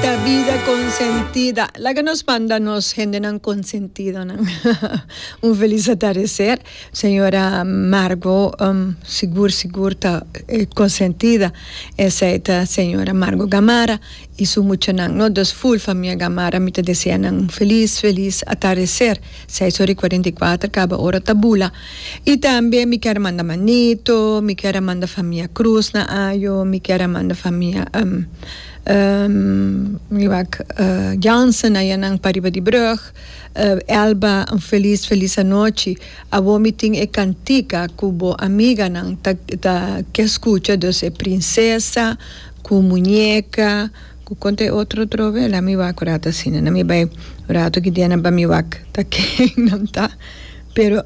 Ta bida consentida. Laga nos manda nos hendenan consentidonan un feliz atardecer. Señora Margo sigur sigur ta consentida. Esey ta señora Margo Gamarra y su muchanan no. Dus full famia Gamarra mi ta desea nan un feliz feliz atardecer. Seis ora y cuarenta y cuatro caba ora ta bula. Y tambe mi kier a manda Manito, mi kier a manda famia Cruz na ayo, mi kier a manda famia. Miwak Jansen a ya nan pariba di brug. Elba un felis felis anochi. Awor mi tin e cantica cu bo amiganan ta ke scucha dus e princesa cu muñeca cu con ta e otro otro we la mi wak cu rato asina na mi bay rato ki dia na ba mi wak ta ken nan ta pero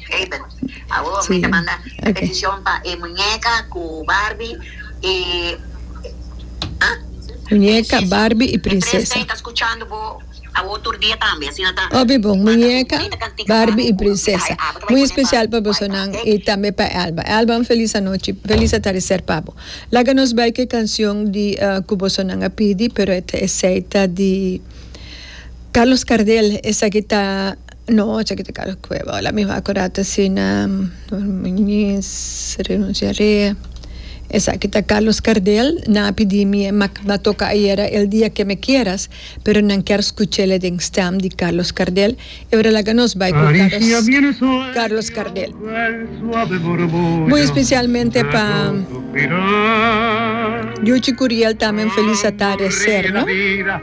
Amen. Awor mi ta manda bendicion pa e muñeca cu Barbie y ha? Muñeca, Barbie y Princesa. Mi presta y ta scuchando bo awor tur dia tambe. Asina ta. Obi bon, Muñeca, Barbie y Princesa. Muy especial pa bosonan y tambe pa Elba. Elba un feliz anochi, feliz atardecer pa bo. Laga nos bay cu e cancion di cu bosonan a pidi pero esey ta di Carlos Cardel esaki ta. No oca ki ta kaba cueva hola mi wak orat asina minis renuncia re esaki ta Carlos Cardel nan a pidi mi mak a toca ayera el dia que me quieras pero nan kier scuchele den stem di Carlos Cardel y ora laga nos bay cu Carlos Cardel muy especialmente pa Yuchi Curiel tambe un feliz atardecer no.